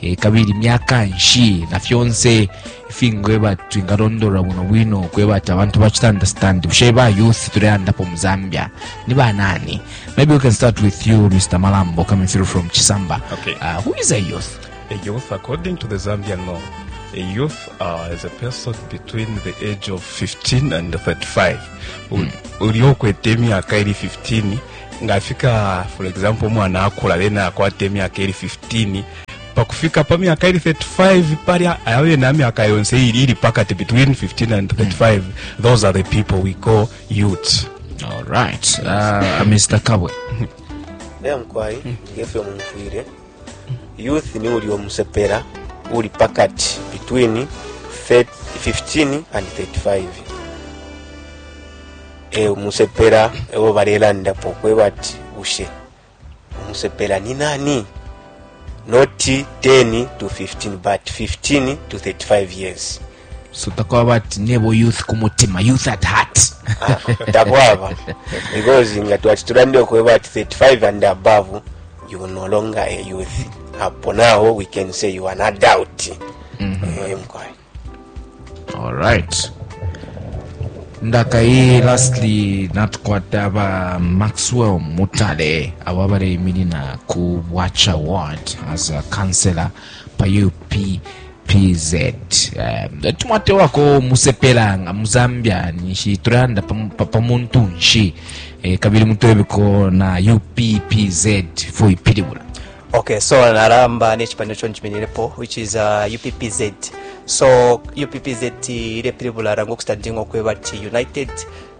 e, kabili myaka nshi na fyonse ifingweba twingalondolola bwino bwino kweba ati abantu bacita understand bushe ba youth tuleandapo mu zambia ni banani maybe we can start with you mr malambo coming through from chisamba okay. uh, who is a youth a youth according to the zambian law a youth uh, is a person between the age of 15 and 35 hmm. uliokwete emyaka iri 15 nga afika for example umwana akula then akwata emyaka eri 15 pakufika pa myaka eri 35 palya abe na myaka yonse iri iri pakati between 15 and 35 those are the people we call youths all right uh, mr kabwe era mukwai ngefyo mumfwire youth ni uli omusepera uli pakati between 30 15 and 35 e umusepela ewo balelandapo kweba ati bushe umusepela ni nani noti 10 to 15 but 15 to 35 years so takwaba ati nebo youth ku mutima youth at heart ah, takwaba because nga twati tulande okweba ati 35 and above you no longer a youth apo naho we can say you are an adult mm -hmm. eh, Alright. ndakai lastly natukwata ba maxwell mutale abo abaleiminina ku watch award as a councillor pa uppz um, tumwatewako musepela nga mu zambia nishi tulanda pam- pa pa muntu nshi eh, kabili mutwebeko na uppz fo ipilibula Ok, so naramba nechipani cho njiminirepo which is uh, UPPZ. So UPPZ ile pilibula rango kustandingo kweba ti United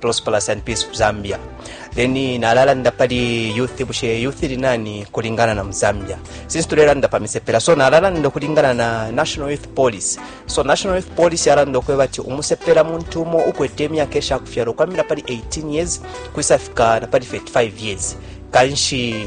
Prosperous and Peace Zambia. Then nalalanda pali youth bushe youth linani kulingana na Zambia. Since tulelanda pa misepela so nalalanda kulingana na National Youth Police. So National Youth Police yarando kweba ti umusepela muntu umo ukwete emyaka esha kufyalo kwamira pali 18 years kwisafika na pali 35 years. Kanshi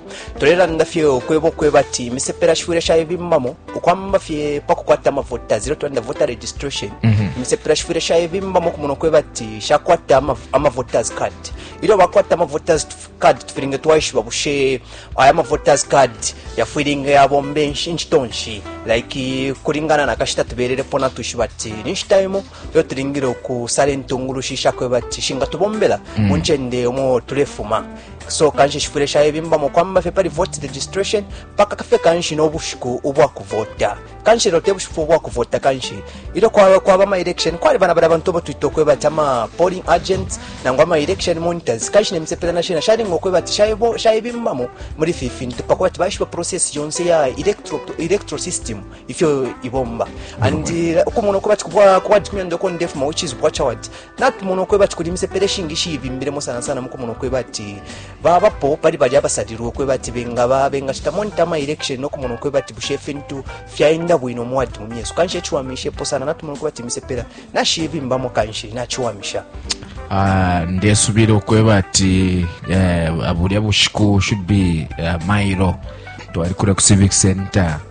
tulelanda fye ukweba ukweba ati imisepela shifwile shayebimbamo ukwamba fye pakukwata amavota zero twanda voter registration mhm. imisepela shifwile shayebimbamo okumona ukweba ati shakwata amavoters card ilyo bakwata amavoters card tufilinge twaishiba bushe aya amavoters card yafwilinge yabomba inchito nshi like kulingana na kashita tubelelepo natwishiba ati ninshita imo lyo tulingile ukusala intungulushi shakwebati shingatubombela mm. mu ncende omo tulefuma so kanshi shifwile shayebimbamo kwamba fye pali vote registration mpaka kafe kanshi n'obushiku ubwakuvota kanshi lelo te bushiku ubwakuvota kanshi ilyo kwaba kwaba ama election kwali bana bali abantu obo twita okweba ati ama polling agents nangu ama election monitors kanshi nemisepela nashina shalinga okweba ati shayebimbamo muli fi fintu pakuba ati baishiba process yonse ya electro, electro system ifyo ibomba and uh, ukumona uko bati kuba kuba tikumya ndoko ndefu ma which is watch out not mono kwe bati kulimse pereshi ngishi ibimbire mo sana sana mukumona kwe bati baba po pali bali abasadiro kwe bati benga ba benga chita monitor my election no kumono kwe bati bushe fintu fyaenda bwino mu wadi mumye so kanshi chwa mishe po sana not mono kwe bati mise pera na shi ibimba mo kanshi na chwa misha Uh, ndesubira okweba ati uh, eh, abulya bushiku should be uh, mairo twali kura ku civic center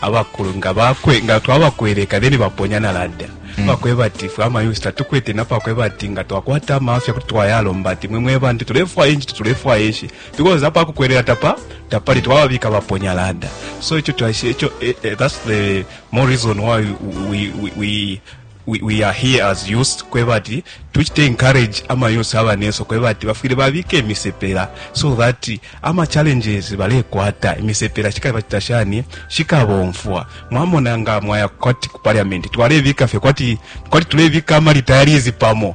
abakulu nga bakwe nga twabakweleka then baponya na ladder mm. bakweba ati fwe amayusi tatukwete napakweba ati nga twakwata amafya kuti twayalomba ati mwe mwe bantu tulefwaya inchi tulefwaya ishi because apa kukwelela tapa tapali twababika baponya ladder so icho twashi icho eh, eh, that's the more reason why we, we, we we, we are here as youth kweba ati tuchite encourage ama youth abaneso kweba ati bafwile babike imisepela so that ama challenges balekwata imisepela shikaba tashani shikabomfwa mwamona nga mwaya kwati ku parliament twalebika fye kwati kwati tulebika ama retirees pamo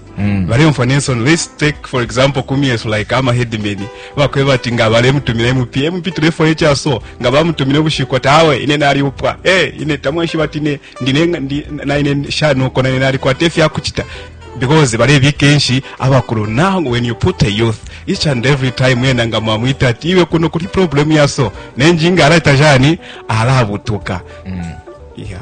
Mm. baleyumfwa nensono let's take for example kumyesu like ama headmen bakweba ati nga balemutumira mp mp tulefo echa so nga bamutumire ubushiko tawe ine nali upwa eh ine tamweshi bati ne ndine ndi, na ine shano kona ine nali kwa tefya kuchita because balebika enshi abakulu now when you put a youth each and every time yena nga mwamwita ati iwe kuno kuli problem yaso nenjinga alaita jani alabutuka mm. yeah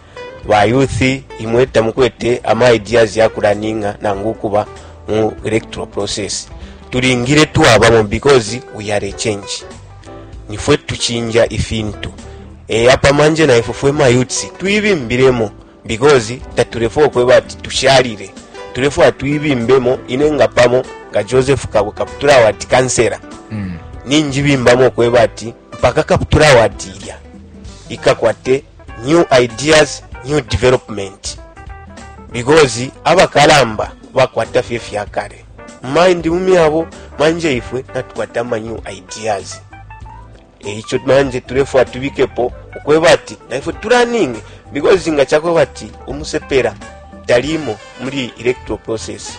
ba youth imwe tamukwete ama ideas ya kulaninga nangu kuba mu electoral process tulingire twabamo because we are a change nifwe tuchinja ifintu e, apa manje naifwe fwe mayutsi tuibimbiremo because tatulefwa okweba ati tushalire tulefwa tuibimbemo ine nga pamo nga joseph kabo kaputula wati kansera mm. ninjibimbamo okweba ati mpaka kaputula wati ilya ikakwate new ideas new development because abakalamba bakwata fye fya kale mind mu myabo manje ifwe natukwata ama new ideas eicho manje tulefwa tubikepo ukweba ati naifwe tulaninge because nga chakweba ati umusepera talimo muli electoral process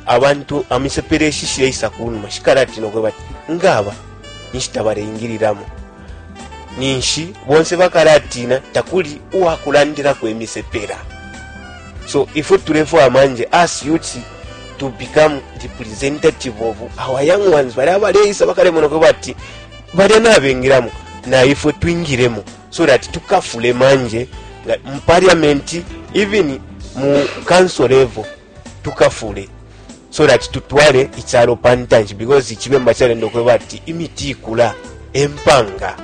abantu amisepera eshishire isa kunuma shikala ati nokweba ati ngaba nishita bareingiriramo ninshi bonse bakalatina takuli uwakulandilako imisepela so ifwe tulefwaya manje as youth to become representative of our young ones bali abaleisa bakalemonako bati balya nabengilamo na ifwe twingilemo so that tukafule manje mu parliament even mu council level tukafule so that tutwale icyalo pa ntanshi because ikibemba kyarenda okweba ati imiti ikula empanga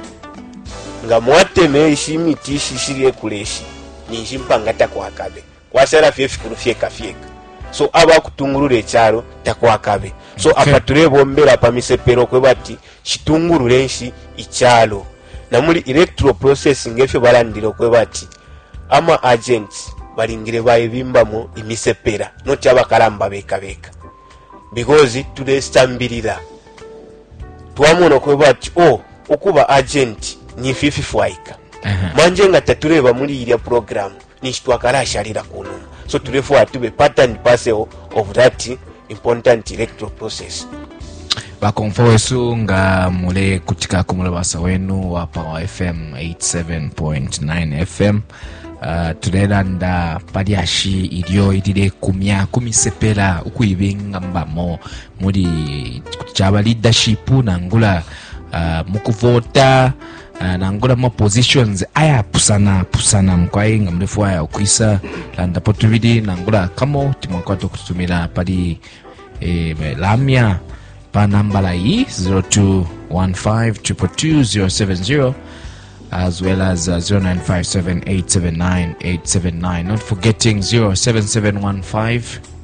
nga mwateme ishi imiti ishi shiri ekula ishi ninshi mpanga takwakabe kwashala fye efikulu fyeka fyeka so abakutungulula ekyalo takwakabe so okay. apa tulebombera pa misepero okweba ati citungulule nshi icalo na muli electoral process ngefyo balandile ukweba ati ama agents balingile baibimbamo imisepela noti abakalamba beka beka because tulesambilila twamona ukweba ati o oh, ukuba agent nifi fifwaika manje nga tatuleba muli ilya programu ninshi twakalashalila ku numa so tulefwaya tube part and parcel of that important electoral process bakomfo wesu nga mulekutika ku mulabasa wenu wa power fm 87.9 fm uh, tulelanda pa lyashi ilyo ililekumya ku misepela ukuibengambamo muli kuti caba leadership nangula uh, mu kuvota uh, nangula ma positions ayapusana pusana mukwai nga mulefwaya ukwisa landapo tubili nangula kamo timwakwata ukututumila pali eh, lamya pa nambala iyi 0215222070 as well as uh, 0957879879 not forgetting 07715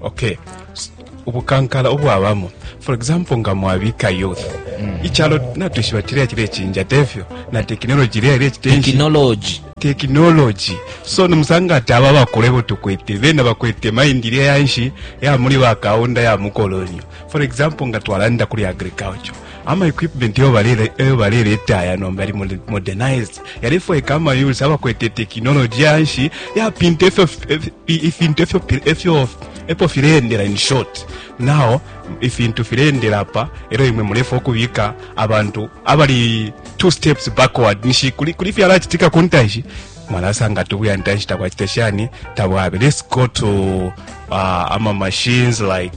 okay ubukankala obwabamo for example nga mwabika youth mm. ichalo natwishiba chile chile chinja tefyo na technology ile ile chitenshi technology technology so nimusanga ati aba bakolebo tukwete bena bakwete mind ile yanshi ya muli bakaunda ya mukolonyo for example nga twalanda kuli agriculture ama equipment yo balele yo balele etaya nomba ali modernized yalefwa ekama yules abakwete technology yanshi ya pinte fyo ifintu efyo efyo epo filendela in short now ifintu filendela pa ero imwe mulefa okubika abantu abali two steps backward nishi kuli kuli fyala chitika kuntashi mwalasanga tubuya ntashi takwachita shani tabwabe let's go to uh, ama machines like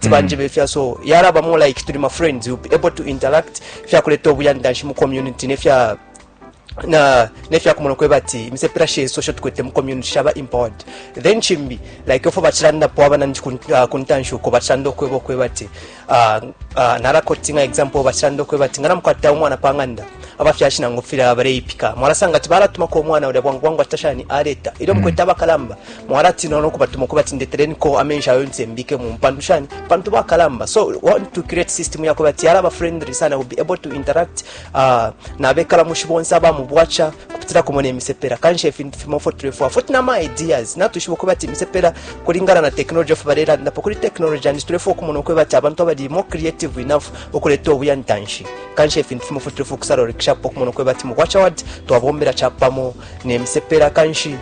ti banje be fya so yara ba more like to my friends you be able to interact fya kuleta obuyandanshi mu community ne fya na ne fya kumona kweba ti mise pressure social tukwete mu community shaba empowered then chimbi like ofo bachiranda po abana ndi ah, kuntanshu ko bachiranda kwebo kweba ti ah, ah, nara coaching example bachiranda kweba ti ngana mkwata umwana panganda abafyashi nangu fira abareipika mwarasanga ati baratuma ko umwana uri bwangu bwangu atashani areta iro mm. mkweta abakalamba mwalatina no kubatuma kubati ndeteleniko amenshi ayo nti mbike mu mpandu shani pantu bakalamba so we want to create system yako bati alaba friendly sana will be able to interact uh, nabekala mushi bonse aba mu bwacha kupitira kumona emisepera kanshi ifintu fimo fo tulefwa foti na ma ideas natushiba kuba ati emisepera kulingana na technology of barera ndapo kuri technology and tulefwa kumona uko bati abantu abali more creative enough okuleta obuyantanshi kanshi ifintu fimo fo tulefwa kusarorikisha po kumona uko bati mu bwacha ward twabombera chapamo ne misepera kanshi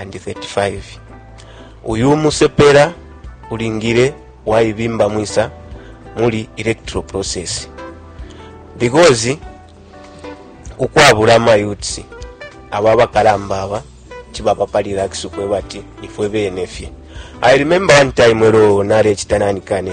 and 35 uyu umusepela ulingile waibimba mwisa muli electoral process because ukwabula amayutsi aba abakalamba aba chibaba pali relax ukweba ati ifwe bene fye i remember one time elo nalecita nanikane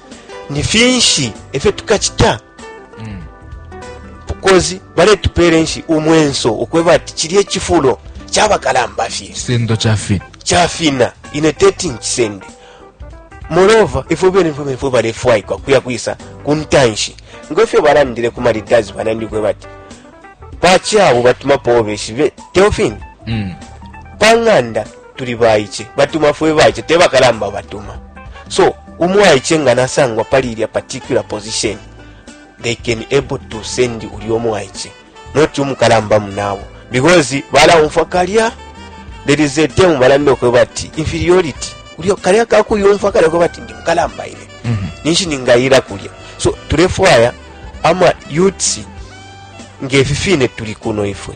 ni finshi efyo tukacita mm. because baletupera enshi umwenso okweba ati chili echifulo chabakalamba fye kisendo chafina chafina ine teti nkisende moreover ifwe bene ifwe bene ifwe balefwaikwa kuya kwisa kuntanshi ngefyo balandile ku malidazi banandikweba ati pachi abo batumapo obeshi teofini mm. pang'anda tuli baice batuma fwe baice te bakalamba batuma so umwaice nga nasangwa pali ilya particular position they can able to send uli omwaice not umukalamba munabo because balawumfwa kalya there is a term balanda okweba ati inferiority ulyo kalya kakuyumfwa kalya okweba ati ndi mukalamba ile mm -hmm. ninshi ningayira kulya so tulefwaya ama youths ngefi fine tuli kuno ifwe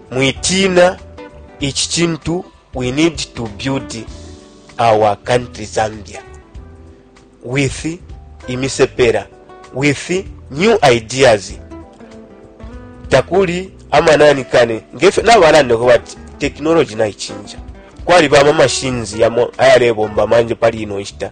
Mwitina ichi chintu we need to build our country Zambia with imisepera with new ideas takuli amanani kane ngefyo nabalandako bati technology naichinja kwali bama machines yamo ayalebomba manje pali ino nshita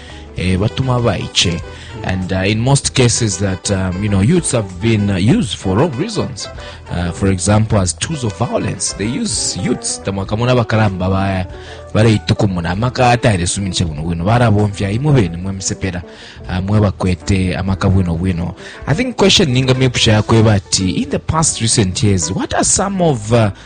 eh, batuma abaiche and uh, in most cases that um, you know youths have been uh, used for wrong reasons uh, for example as tools of violence they use youths tamwakamona abakalamba baya baleituka umuntu amaka atailesuminisha bwino bwino barabomfya imwe bene mwe misepera uh, mwe bakwete amaka bwino bwino i think question ninga mepusha yakweba ati in the past recent years what are some of uh,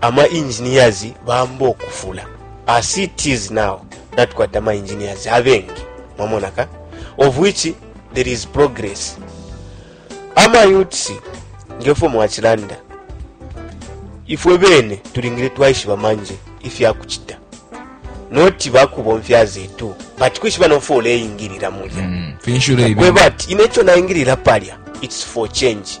Ama engineers bamba ukufula. As it is now, natukwata ama engineers abengi. Mwamona ka? Of which there is progress. Ama youths ngefo mwachilanda. Ifwe bene tulingire twaishiba manje ifya kuchita. Noti bakubomfya zetu. But kwishiba no fole ingirira mulya. Mm, finshule ibi. Kwebati inecho na ingirira palya. It's for change.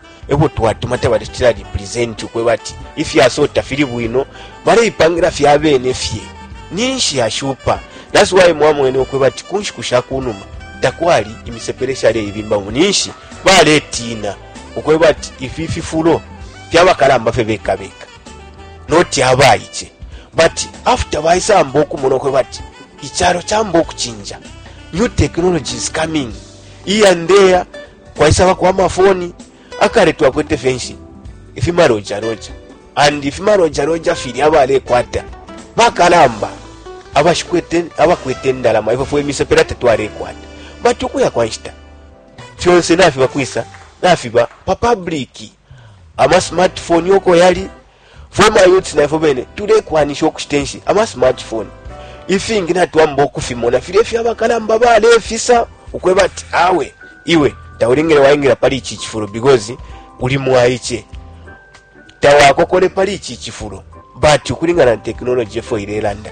ebo twatuma tabalecitila represent ukweba ati ifyaso tafili bwino baleipangila fye abene fye ninshi yashupa that's why mwamwene ukweba ati ku nshiku sha ku numa takwali imisepele shaleibimbamo ninshi baletiina ukweba ati ifi fifulo fyabakalamba fye bekabeka noti abaice but after baisamba okumona ukweba ati ichalo chamba okuchinja new technology is coming here and there kwaisabako amafoni akale twakwete fenshi ifimarojaroja and ifimarojaroja fili abalekwata bakalamba abashikwete abakwete ndalama ifwe fwe misepela tetwalekwata bati ukuya kwa nshita fyonse nafiba kwisa nafiba pa publiki ama smartphone uko yali fwe mayouths naifwe bene tulekwanisha ukushita enshi ama smartphone ifingi natwamba ukufimona filya ifyo abakalamba balefisa ukweba ati awe iwe taulingile waingira pali ichi chifulo because uli mwaiche tawakokole pali ichi chifulo but ukulingana na technology efo ilelanda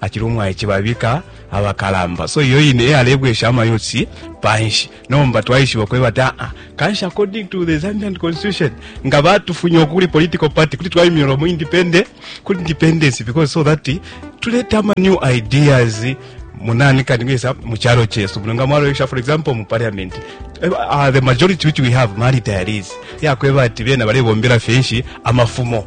acili umwaice babika abakalamba so iyo ine eyalebwesha amayotsi panshi nomba twaishiba kweba ati aa kanshi according to the zambian constitution nga batufunya okuli political party kuti twayimyola mu independent kuti independence because so that tuleta ama new ideas munani kati ngesa mu kyalo kyesu muno nga mwaloyesha for example mu parliament uh, the majority which we have mali diaries yakweba ati bena balebombera fenshi amafumo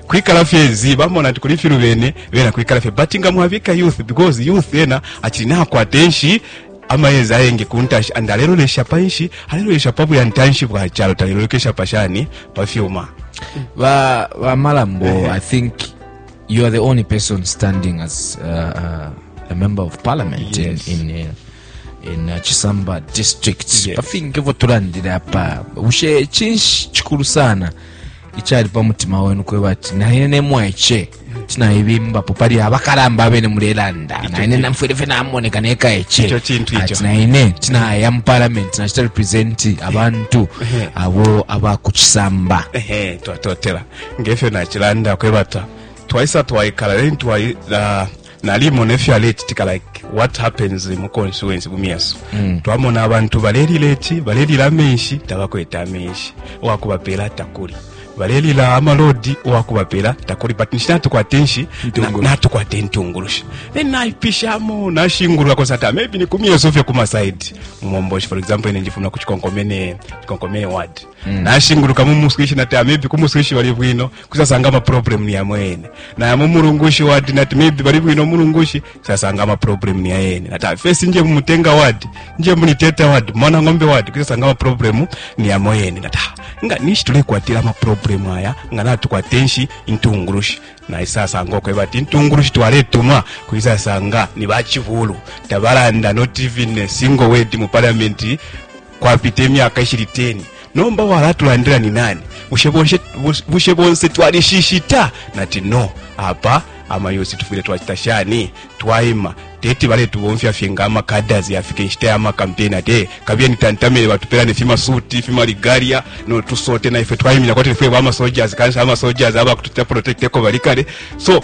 kwikala fye zi bamona ati kuli filu bene bena kwikala fye but nga mwabika youth because youth yena achili nakwata enshi amayezi ayengi ku ntashi and alelolesha pa nshi alelolesha pa buya ntanshi bwa chalo talelolekesha pa shani pa fyuma ba ba malambo i think you are the only person standing as uh, uh, a member of parliament yes. in, in uh, in uh, chisamba district yes. pafinge votolandira pa ushe chinshi chikulu sana ichali pa mutima wenu kweba ati naine nemwaiche tinaibimbapo pali abakalamba abene mulelanda naine namfwile fe namoneka nekaeche ati naine tinaya mu parliament nachita representi abantu abo abakuchisamba twatotela ngefyo nachilanda kwebata twaisa twaikala leni nalimo nefyo alecitika like what happens mu constituency bumiyaso mm. twamona abantu balelila eki balelila amenshi tabakwete amenshi owakubapeela takuli balelila amalodi owakubapela takuli but nishina tukwate nshi natukwate ntungulushi then naipishamo nashingulula kosa ta maybe nikumyeso fye kumasaidi mumomboshi for example ine njifuna kuchikonkomene chikonkomene ward Mm. nashinguluka mu muswishi nati ah, maybe ku muswishi bali bwino kusasanga ama problem ni yamwe yene naya mu mulungushi wadi nati maybe bali bwino mulungushi kusasanga ama problem ni yene nati ah, fesi nje mu mutenga wadi nje mu liteta wadi mwana ng'ombe wadi kusasanga ama problem ni yamwe yene nati ah, nga nishi tulekwatira ama problem aya nga natukwate nshi intungulushi naye sasanga okweba ati intungulushi twaletuma kuisasanga ni bachivulu tabalanda not even a single word mu parliament Kwapita imyaka ishili 10 nomba walatulandila ni nani? Bushe bonse twalishishita? Nati no, apa amayosi tufwile twacita shani? Twaima, teti baletubomfya fye nga amakaddas, yafika inshita ya makampeni ati eh, kabiyeni tantamile batupela ne fimasuti fimaligalya no tusote, na ifwe twaimina kwati nifwe bamasojas, kanshi amasojas abakututila protect eko bali kale so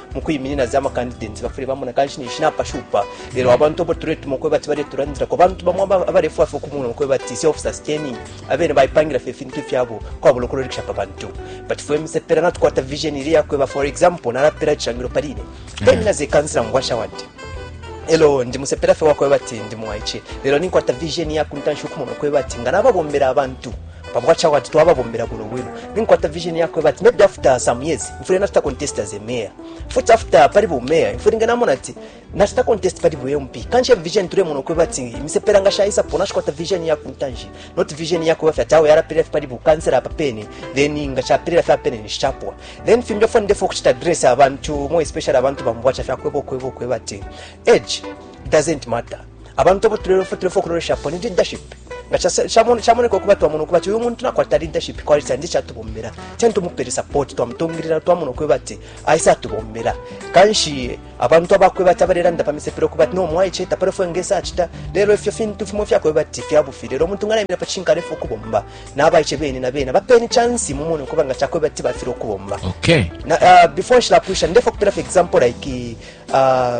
mukwiminina za makandidenti bafule bamona kanshi ninshi napashupa lelo abantu abo tuletuma ukweba ati baletulandirako abantu bamwe abalefwa fe okumuna ukweba ati self sustaining abene baipangira fe ifintu ifyabo kwabula ukulolikisha pa bantu but fwe misepela natukwata vision ili yakweba for example nalapela icishangilo paline temina ze kansila mubwasha wandi elo ndi musepela fe wakweba ati ndi mwaice lelo ninkwata vision yakuntanshi ukumona ukweba ati nga nababombela abantu pamwacha wati twababombela bwino bwino ninkwata vision yakwe bati maybe after some years mfule nafita contest as a mayor futi after pali bu mayor mfule ngana mona ati nafita contest pali bu MP kanche vision tule mona kwe bati misepera nga shaisa pona shikwata vision ya kuntanji not vision ya kwa fyata yara pele pali bu cancer apa pene then nga cha pele fa pene ni shapwa then fimbe fo ndefo kuchita dress abantu more especially abantu bamwacha fya kwebo kwebo kwe bati age doesn't matter abantu abo tulefo tulefo kuloleshapo ni leadership nga chamoneka ukuba twamona ukuba ti uyu muntu nakwata leadership quality andi chatubombela teni tumupele support twamutungilila twamona ukweba ati aise atubombela kanshi abantu abakweba ati abalelanda pamisepela ukuba ati nomwaiche tapale fwe ngesa achita lelo ifyo fintu fimo fyakweba ati fyabufi lelo omuntu nga naimila pachinka alefa ukubomba nabaiche bene na bene bapeni chansi mumone ukuba nga chakweba ati bafile ukubomba okay. na, uh, before nshilapwisha ndefa kupela for example like uh,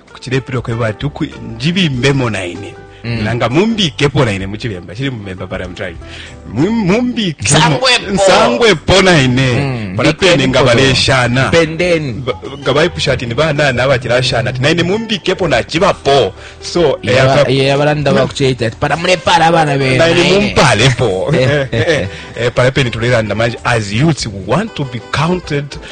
kucilepilo kweba ati uku njibimbemo naine Mm. nanga mumbikepo naine muchilemba chili mumemba but I'm trying Mum- mumbikemo Nsangwepo. nsangwepo naine Mm. pala pene nga baleshana pendeni Ba- nga baipusha ati nibanana abachilashana ati naine mumbikepo nachibapo so eyaka- ye abalanda bakucheita ati para mulepara abana naine bena mumpalepo Eh, eh, eh. Eh, pala pene tulelanda manje as youths we want to be counted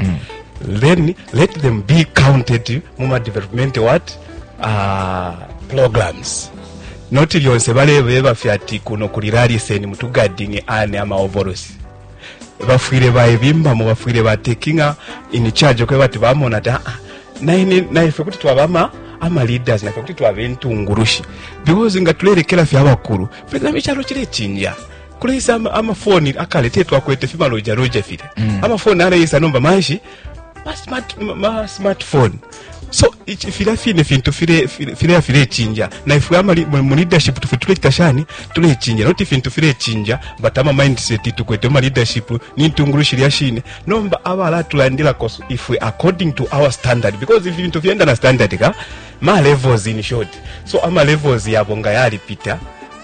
mm. then let them be counted mu ma development what uh, programs not lyonse balebeba fye ati kuno kuli raliseni mutugadinge ane amaovorosi bafwire baebimbamo bafwire batekinga in charge okweba ati bamona ati aa ah, naife kuti twabama ama leaders naife kuti twaba entungurushi because nga tulerekera fye abakuru perezida w'ekyalo kirekinja kuleisa ama, ama phone akale te twakwete fiba loja loja file mm. ama phone aleisa nomba manshi ma smart ma, ma smartphone so filya fine fintu fileya filechinja na ifwe mu leadership tufe tulecita shani tulechinja noti fintu filechinja but ama mindset tukwete ma leadership ni ntungulu shilya shine nomba abala tulandilako ifwe according to our standard because if ifintu fyenda na standard ka ma levels in short so ama levels yabo nga yalipita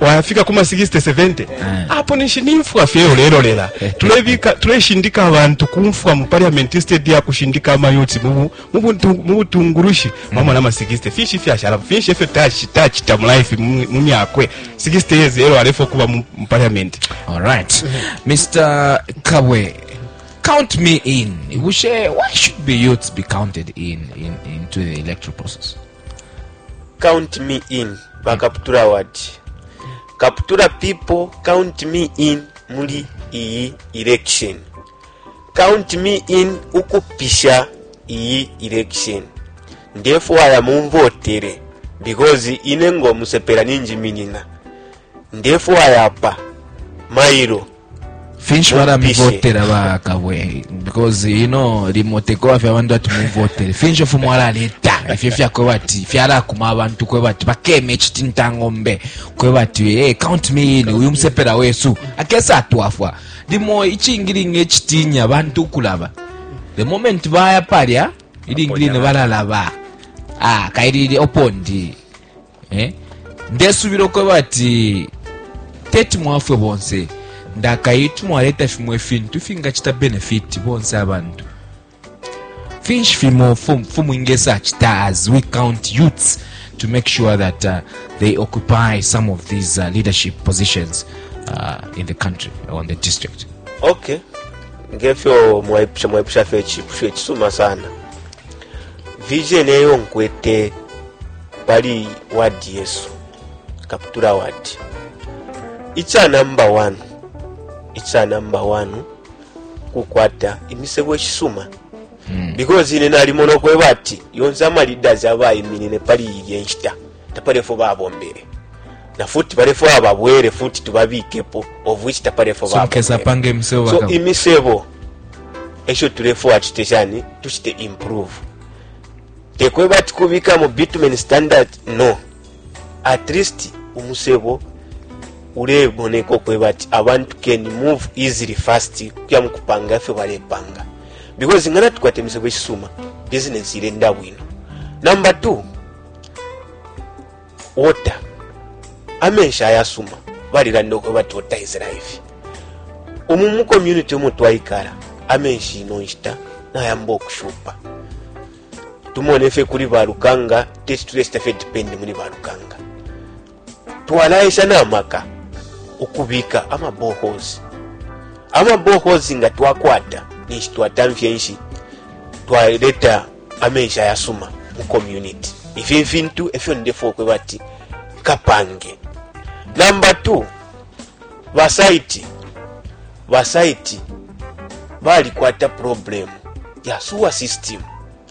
wayafika kuma 60 70 ah. apo ninshi nimfwa fye ulelolela tulebika tuleshindika abantu kumfwa mu parliament instead ya kushindika amayoti mu mu butungulushi mm. mama na ma 60 fishi fyashala fishi fye touch touch ta life mu myakwe 60 years ero alefo kuba mu parliament all right mr kabwe count me in bushe why should be youths be counted in in into the electoral process count me in bakaputula award kaputula people count me in muli iyi election count me in ukupisha iyi election ndefwaya mumvotere because ine ngomusepela ninjiminina ndefwaya apa mailo finshi baramuvotera ba kabwe because you know remote ko afya abantu ati muvotere finshi fumu arareta ifyo fyakwe bati fyarakuma abantu kwe bati bakeme chiti ntangombe kwe bati hey, eh, count me in uyu musepera wesu akesa atwafwa limo ichingiringe chitinya abantu kulaba the moment baya palya ilingirine bararaba ah kairire opondi eh? ndesubila ukweba ati teti mwafwe bonse ndakai tumwaleta fimo ifintu fingacita benefiti bonse abantu finshi fimo fumu ingesa acita as we count youths to make sure that uh, they occupy some of these uh, leadership positions uh, in the country or in the district okay ngefyo mwaipusha mwaipusha fyo icipusho icisuma sana vision eyo nkwete pali wadi yesu kaputula wadi ica namba 1 ica namba 1 kukwata imisebo ishisuma hmm. because ine nalimona okweba ati yonse amaleaders abayiminine pali ilya enshita tapali ifyo babombele na futi balefwaya babwele futi tubabikepo of which tapali ifyo babombele so imisebo esho tulefwaya tucite shani tucite improve tekweba ati kubika mu bitumen standard no at least umusebo ulemoneka okweba ati abantu can move easily fast kuya mukupanga ifyo balepanga because ngana tukwata emisebo eshisuma business ilenda bwino number two water amenshi ayasuma balilanda uko bati water is life umu mu community umo twaikala amenshi ino nshita nayamba okushupa tumone fye kuli balukanga teti tulesita fye depend muli balukanga twalaesha na maka ukubika ama boreholes ama boreholes nga twakwata ninshi twatamfya enshi twaleta amenshi ayasuma mu community ifi fintu efyo ndefa okweba ati kapange namba 2 basaiti basaiti balikwata problemu ya sewer system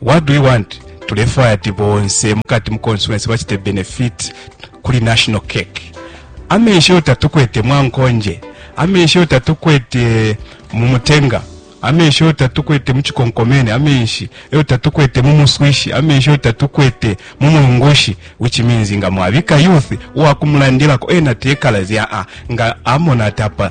What do we want? Tulefwaya ati bonse mukati mu constituency bachite benefit kuli national cake. Amenshi yo tatukwete mwankonje, amenshi yo tatukwete mu mutenga, amenshi yo tatukwete mu chikonkomene, amenshi yo tatukwete mu muswishi, amenshi yo tatukwete mu mulungushi, which means nga mwabika youth uwakumulandilako ena tekala zya a nga amona tapa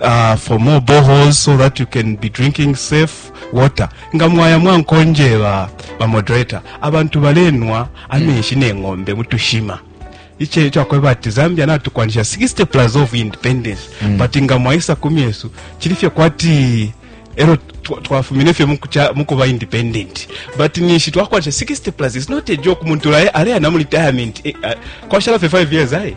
uh, for more boreholes so that you can be drinking safe water nga mwaya mwankonjeba bamoderator abantu balenwa amenshi neng'ombe mutushima iche icho akweba ati zambia natukwanisha 60 plus of independence mm. but nga mwaisa kumi yesu chili fye kwati ero twa- twafumine fye mukucha- mukuba independent but nishi twakwanisha 60 plus is not a joke muntu ale aleya na mu retirement eh, ah, kwashala fye 5 years ayi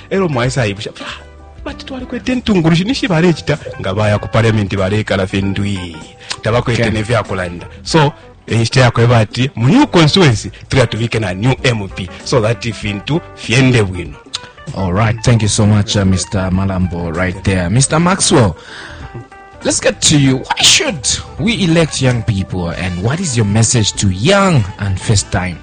elo mwaisa ibusha ah, bati twalikwete intungulushi nishi balechita nga baya ku parliament balekala findwi tabakwete okay. nevyakulanda so enshita eh, yakweba ati mu new constituency tuya tubike na new mp so that ifintu fyende bwino all right thank you so much uh, mr malambo right there mr maxwell Let's get to you. Why should we elect young people and what is your message to young and first time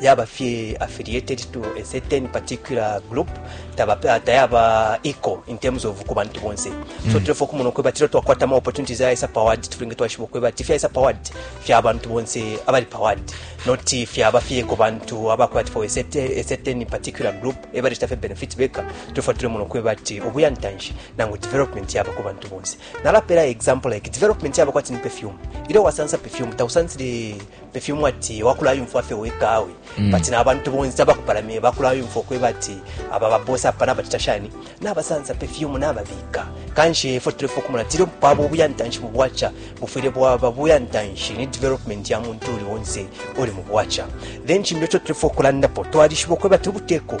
yaba fye affiliated to a certain particular group taba tayaba equal in terms of ku bantu bonse so mm. tulefo kumona kweba tilo twakwata ma opportunities ya isa powered tulinge twashibo kweba tifya isa powered fya abantu bonse abali powered not fya abafye ko bantu abakwati for a certain, a certain particular group ebali staff benefit beka tulefo tule mono kweba ti obuya ntanshi nangu development yaba ku bantu bonse nalapela example like development yaba kwati ni perfume ile wasansa perfume tausansile ifyo mwati wakulayumfwa fye weka awe mm. but na abantu bonse abakupalamye bakulayumfwa okweba ati aba babosi apa nabacita shani nabasansa pe fyumu nababika kanshi ifo tulefa okumona tiri bwaba obuyantanshi mu bwaca bufwire bwaba buyantanshi ni development ya muntu uli wonse uli mu bwaca then kimbi ekyo tulefa okulandapo twalishiba okweba ti obuteko